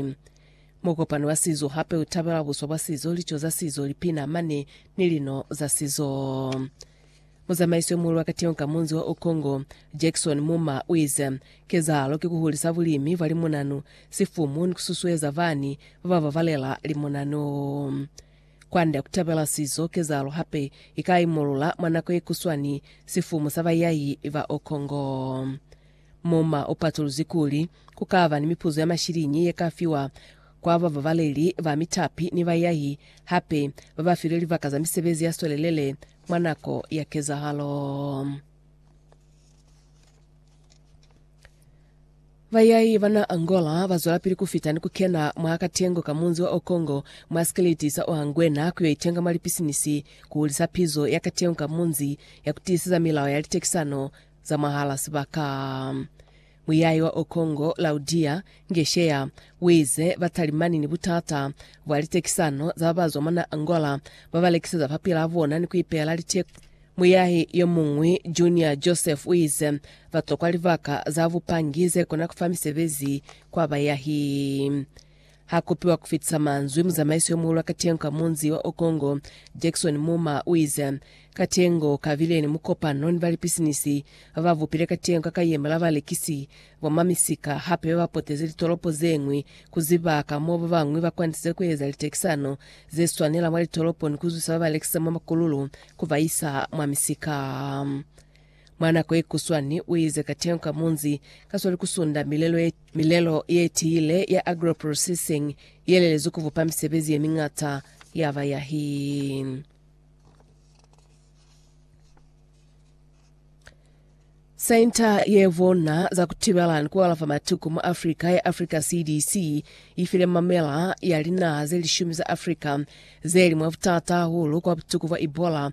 Muzwale. Mukopano wa sizo hape u tabelwa buswa bwa sizo, lico za sizo, lipina, mane, ni lino za sizo. Muzamaiso yo muhulu wa katiho ka munzi wa Okongo, Jackson Muma, u ize, Kezahalo ki ku hulisa bulimi bwa limunanu, sifumu ni ku susueza bani ba ba babalela limunanu. Kwand'a ku tabela sizo, kezahalo hape i ka imulula mwa nako ye kuswani sifumu sa bayahi ba Okongo. Moma u patuluzi kuli, ku ka ba ni mipuzo ya mashiliñi ye ka fiwa kwa bababaleli ba mitapi ni baiahi hape ba ba filwe libaka za misebezi ya swelelele mwa nako ya kezahalo. Baiahi ba na Angola ba zwelapili ku fita ni ku kena mwa katengo ka munzi wa Okongo mwa sikeliti sa Oanguena ku yo itenga mwa lipisinisi ku hulisa pizo ya katengo ka munzi ya ku tiiseza milao ya litekisano za mwahal'a sibaka. Muyayi wa Okongo, Laudia Ngeshea, uize batalimani ni butata bwa litekisano za babazwa mwa na'a Angola babalekiseza mapil'a bona ni kuipeela liteko. Muyahi yomuñwi, Junior Joseph, uize batokwa libaka za bupangi zekona kufa misebezi kwa bayahi. Ha kopiwa ku fitisa manzwi, muzamaiso yo muhulu wa katengo ka munzi wa Okongo, Jackson Muma, u ize, Katengo ka bile ni mukopano ni balipisinisi ba ba bupile katengo ka kayema la balekisi, bomamisika, hape ba ba potezi litolopo ze ñwi ku ziba ka mo ba bañwi ba kwanisile ku eza litekisano ze swanela mwa litolopo ni ku zwisa ba ba lekisa mwa makululu ku ba isa mwa misika. Mwa nako ye kuswani, u ize ka teo ka munzi ka swali ku sunda milelo ye, milelo ye tiile ya agro-processing ye lelezwi ku bupa misebezi ye miñata ya bayahi. Senta ye Bona za Kutibela ni Kualafa Matuku mwa Afrika ya Africa CDC ifile mamela ya linaha ze lishumi za Afrika zeli mwa butata hahulu kwa butuku bwa Ebola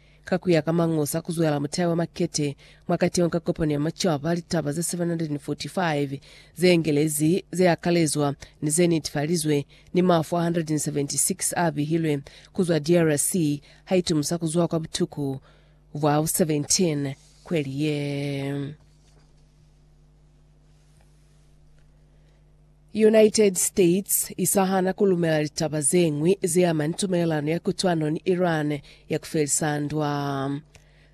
Ka ku ya ka Mañosa, ku zwela mutai wa makete mwa kateho ka kopano ya macaba litaba ze 745 ze engelezi ze akalezwa ni ze netefalizwe, ni mafu a 176 a bihilwe ku zwa DRC ha itumusa ku zwa kwa butuku bwa bo 17 kweli ye. United States i sa hana ku lumela litaba ze ñwi ze ama ni tumelelano ya kutwano ni Iran ya ku felisa ndwa.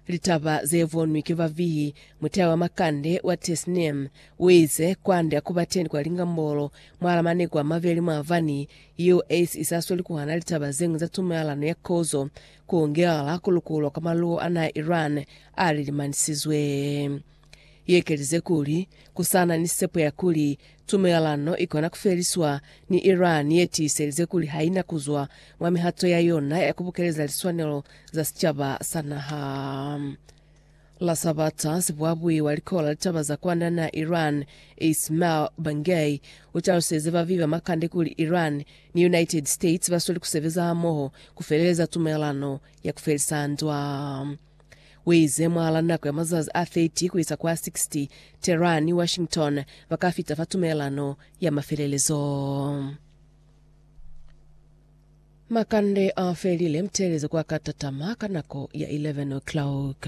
Litaba ze bonwi ki ba vihi mutai wa makande wa Tesnim u ize, Kwande a ku ba teñi kwa lingambolo mwal'a maneku a mabeli mwabani US i sa sweli ku hana litaba ze ñwi za tumelelano ya kozo, ku ngelela ku lukulwa kwa maluwo a naha Iran a lilimanisizwe. Iekelize kuli, ku sa na ni sepo ya kuli tumelelano i kona ku feliswa ni Iran ye tiiselize kuli ha i na ku zwa mwa mihato ya yona ya ku bukeleza liswanelo za sicaba sa naha. La Sabata, sibuabui wa Likolo la Litaba za Kwanda na Iran, Ismail Bangei, u taluselize ba viba makande kuli Iran ni United States ba sweli ku sebeza hamoho ku feleleza tumelelano ya ku felisa ndwa. Uize, Mwala nako ya mazazi a 30 kuisa ku a 60, Tehran ni Washington baka fita fa tumelelano ya mafelelezo. Makande a felile, mutelezo kwa ka tatama ka nako ya 11 o'clock.